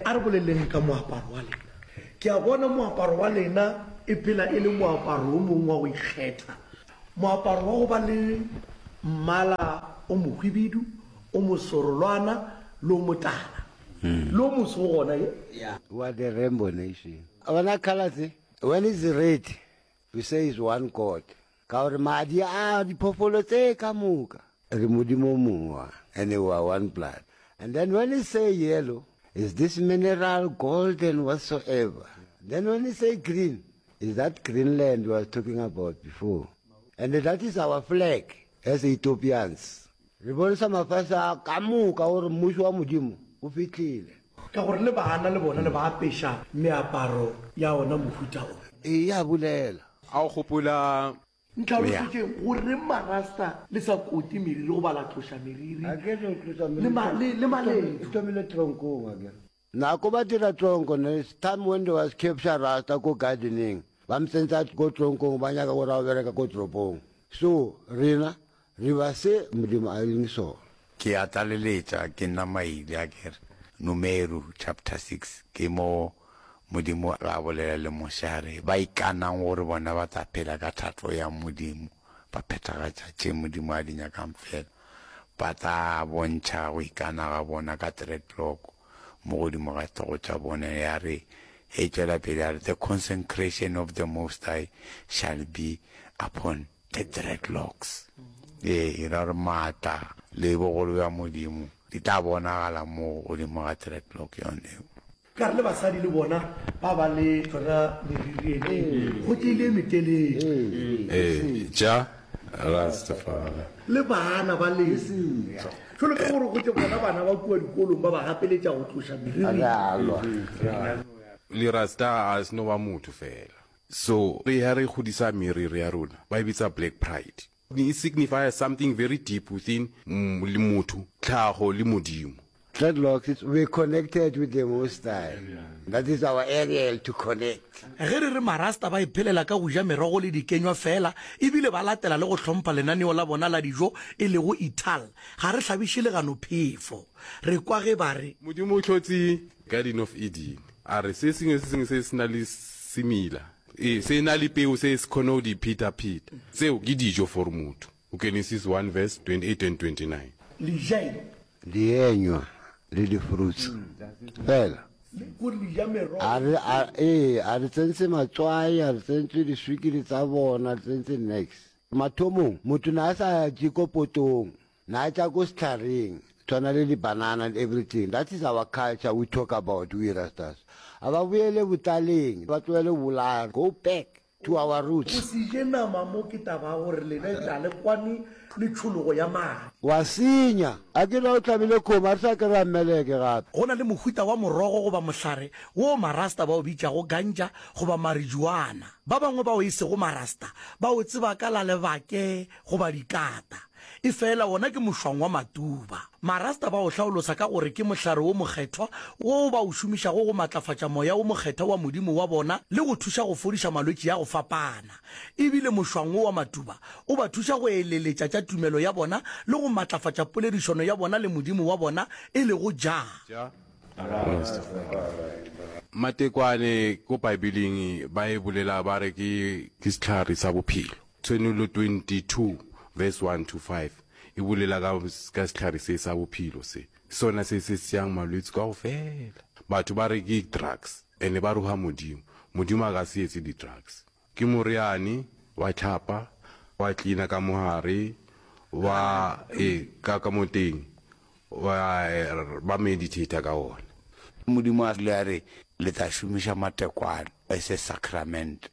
A re boleleng ka moaparo wa lena. Ke a bona moaparo wa lena e phela e le moaparo o mongwe wa go ikgetha, moaparo wa go ba le mmala o mohwibidu, o mosorolwana le o motala, le o moso o gona ye. We are the rainbow nation. A bona colour tse? When it's red, we say is one God. Ka gore madi a diphoofolo tse ka moka. Re Modimo o mong wa, ene wa one blood. And then when he say yellow, is this mineral, gold and whatsoever. Then when he say green, is that Greenland he was talking about before. And that is our flag as Ethiopians. Re bontsha mafase a ka moka gore Mmušo wa Modimo o fihlile. Ka gore le baana le bona le ba apeša meaparo ya ona mohuta o. Eya bolela. A o gopola? Ntlhalosetšeng goreng Marasta le sa kote meriri goba la tloša meriri le maledu. Nako ba dira tlonko ne it's time when they was capture Rasta ko gardening ba mtsentsa ko tlonkong ba nyaka gore a bereka ko tropong so rena re ba se Modimo a leng sona. Ke a tlaleletša ke nna Maile a ke re, Numeru chapter six ke mo Modimo a bolela le Moshe a re ba ikanang gore bona ba tla phela ka thato ya Modimo ba phethagatša tše Modimo a di nyakang fela. Ba tla bontšha go ikana ga bona ka dreadlock mo godimo ga hlogo tša bona. Ya re, e tšwela pele ya re, The consecration of the Most High shall be upon the dreadlocks. Ee, e ra gore maatla le bogolo bja Modimo di tla bonagala mo godimo ga dreadlock yone. Ka re le basadi le bona ba ba le tsona meriri e go tše ile metelele. Eja Rastafari. Le bana ba le jalo ka gore go tše bona bana ba kua dikolong ba ba gapeletša go tloša meriri. Le Rasta a se no ba motho fela. So re ya re kgodisa meriri ya rona ba e bitsa black pride. E signifier something very deep within le motho, tlhago le Modimo. Dreadlocks were connected with the Most High. That is our aerial to connect. Ge re re Marasta ba iphelela ka go ja merogo le dikenywa feela e bile ba latela le go hlompha lenaneo la bona la dijo e lego Ital, ga re hlabiše legano phefo. Re kwa ge ba re. Modimo o hlotse Garden of Eden, a re se sengwe se sengwe se se na le semela. E se na le peu se se kgone go di pheta-pheta. Tseo ke dijo for motho. Genesis one verse 28 and 29. Le ja eng? Dienywa le di-fruits fela. Le kore le ja merogo A re, a, fela. ee, a re tsentse matswai, a re tsentswe diswikiri tsa bona, a re tsentse niks. Mathomong, motho ne a sa je ko potong. Na tša ko sehlaring tshwana le di banana and everything that is our culture we talk about we rastas a ba boele botlaleng ba tlohele go bolaya go back to our roots. Go se je nama mo ke taba ya gore lena e tla le kwane le tšhologo ya madi. Wa senya. A ke na o tlabile kgomo a re sa kry-a meleke gape. Go na le mohuta wa morogo goba mohlare woo Marasta ba o bitšago ganja goba marijuana. Ba bangwe bao e sego Marasta ba o tseba ka la lebake goba dikata. Efela wona ke mošwang wa matuba. Marasta ba o hlaolosa ka gore ke mohlare wo mokgethwa woo ba o šomišago go matlafatša moya wo mokgethwa wa Modimo wa bona le go thuša go fodiša malwetši a go fapana. E bile mošwang wo wa matuba o ba thuša go eleletša tša tumelo ya bona le go matlafatša poledišano ya bona le Modimo wa bona, e lego Jah. Matekwane ko Baebeleng ba e bolela ba re ke sehlare sa bophelo. Tshwenulo 22 verse 1 to 5 e bolela ka ka sehlare se sa bophelo se sona se se seyang malwetsi kaofela. Batho ba re ke drugs and ba roha Modimo. Modimo a ka se etse di drugs. Ke moriane, wa tlhapa, wa cleaner ka mo hare, wa e ka ka mo teng wa ba meditator ka ona. Modimo a ile a re le tla šomiša matekwane as a sacrament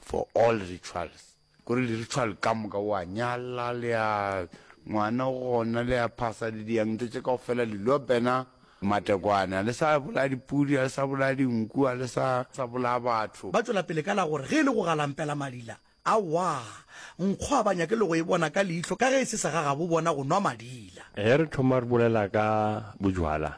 For all rituals, kore li ritual ka moka, o a nyala, le a ngwana gona, le a phasa, le diang ntho tše kaofela, li lo bena matekwane, a le sa bolaya dipudi, a le sa bolaya dinku, a le sa sa bolaya batho. Ba tšwela pele ka la gore, ge e le go galampela malila, awaa, nkgo a ba nyake le go e bona ka leihlo ka ge e se sa gagabo bona go nwa malila. Ge re thoma re bolela ka bojwala,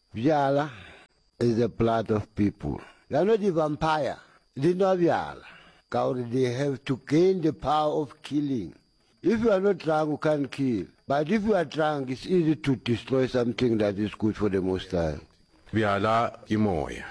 Bjala is the blood of people. Ya no di vampire di nwa bjala ka gore they have to gain the power of killing. If you are not drunk you can't kill but if you are drunk it's easy to destroy something that is good for the most high. Bjala ke moya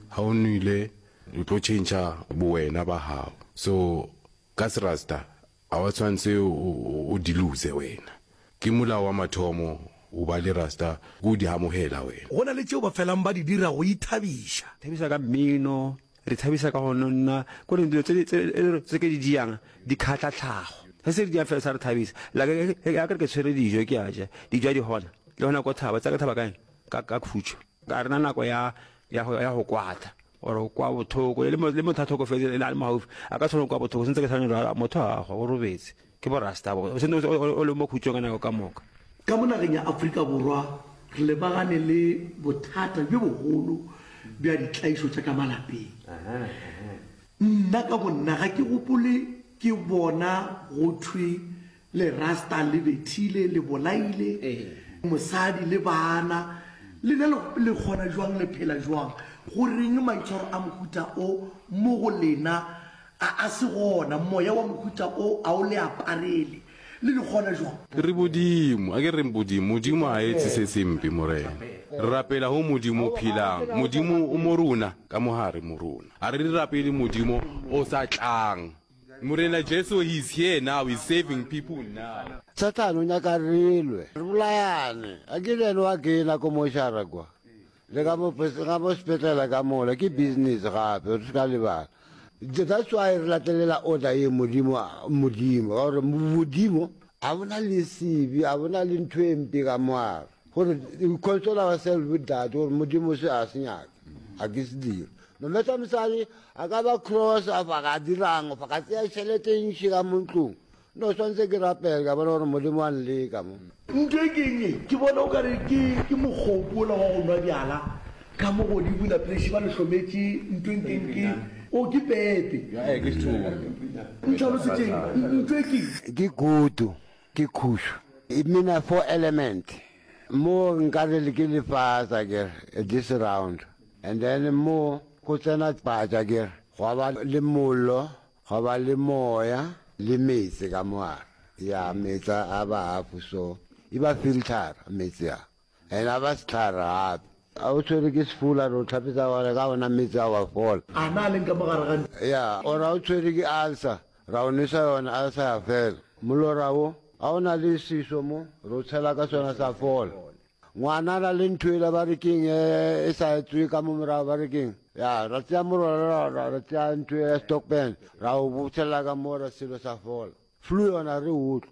ha o nwile o tlo change bowena ba hao so ka serasta A wa tshwantse o di lose wena. Ke molao wa mathomo go ba le rasta ke go di amogela wena. Go na le tšeo ba felang ba di dira go ithabiša. Thabisa ka mmino, re ithabisa ka go nonna ko reng dilo tse ke di jang di kgatla tlhago. Se se re jang fela sa re thabisa. Like ya ke re ke tshwere dijo ke a ja, dijo a di gona. Le gona ko thaba, tsaya ke thaba kae? Ka khutšo. Ga re na nako ya go kwata. gore o kwa bothoko le motho a tlhokofetse le a le mo gaufi a ka tshwana o kwa bothoko sentse ke tshwane jalo motho a gwa o robetse ke borasta bo sentse o le mo khutsong ka nako ka moka ka mo nageng ya aforika borwa re lebagane le bothata bjo bogolo bja ditlaišo tša ka malapeng nna ka bonna ga ke gopole ke bona go thwe Le rasta le bethile, le bolaile mosadi le bana. Lena le, le kgona jwang, le phela jwang? Goreng maitshwaro a mohuta o mo go lena a, a se gona? Moya wa mohuta o a o le aparele, le le kgona jwang? Re Bodimo, a ke reng Bodimo? Modimo ga a etse se sempe, Morena. Re rapela go Modimo o phelang. Modimo o mo rona, ka mo gare mo rona. A re di rapele Modimo o sa tlang. Morena Jesu, He is here now, He's saving people now. Satan o nyaka re lwe, re bolayane. A ke le yena wa kena ko mošara kwa, le ka mo ga mo sepetlela ka mola, ke business gape, re se ka lebala. That's why re latelela order ye Modimo, Modimo, ka gore Modimo a bona le sebe, a bona le ntho e mpe ka moara, gore we console ourselves with that, gore Modimo se a se nyaka. ga ke se dire no matter mosadi a ka ba cross a fa ga dirang fa ga tseya tšhelete e ntši ka mo ntlong no tshwanetse ke rapele ka bona gore modimo a nleka mo ntho e kenye ke bona o kare ke mogopo ola wa go nwa bjala ka mo godimo laplesi ba le hlometše ntho e nkenke o ke pepe ntlhalosetšeng ntho e ke ke kutu ke khušu e mina four element Mo nkare le ke lefatsa kere this round and then mo go tsena patša kere gwa ba le mollo gwa ba le moya le metse ka moara ya metsa a ba hafu so e ba filter metse a and a ba setlhare gape a o tshwere ke sefula ro tlhapetsa gore ka ona metse a wa fola a na leng ka mogare ga ya ora o tshwere ke ulcer Ra o nwesa yona a sa ya fela. Molora wo, a o na le seso mo, re o tshela ka sona sa fola. Ngwana a na le ntho ela ba re keng e, e sa etswe ka mo morago ba re keng. Ya, ra tšea molora ra, ra, ra tšea ntho ya stockpen, ra o botshelela ka mo ra selo sa fola. Flu yona re utlwa.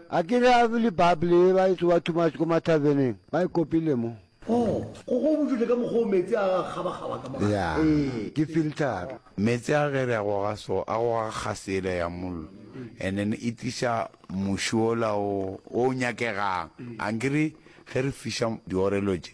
A ke re a bule Bible ye ba e tsoba too much ko ma taverneng ba e kopile mo. Oh, go go botšotše ka mokgwa o meetse a ga kgabakgaba ka mo gare. Yeah, ke filter. Meetse a ge re a goga so, a goga kgase yela ya mollo and then e tliša muši wola o o nyakegang. Ankere ge re fiša diorelo tše,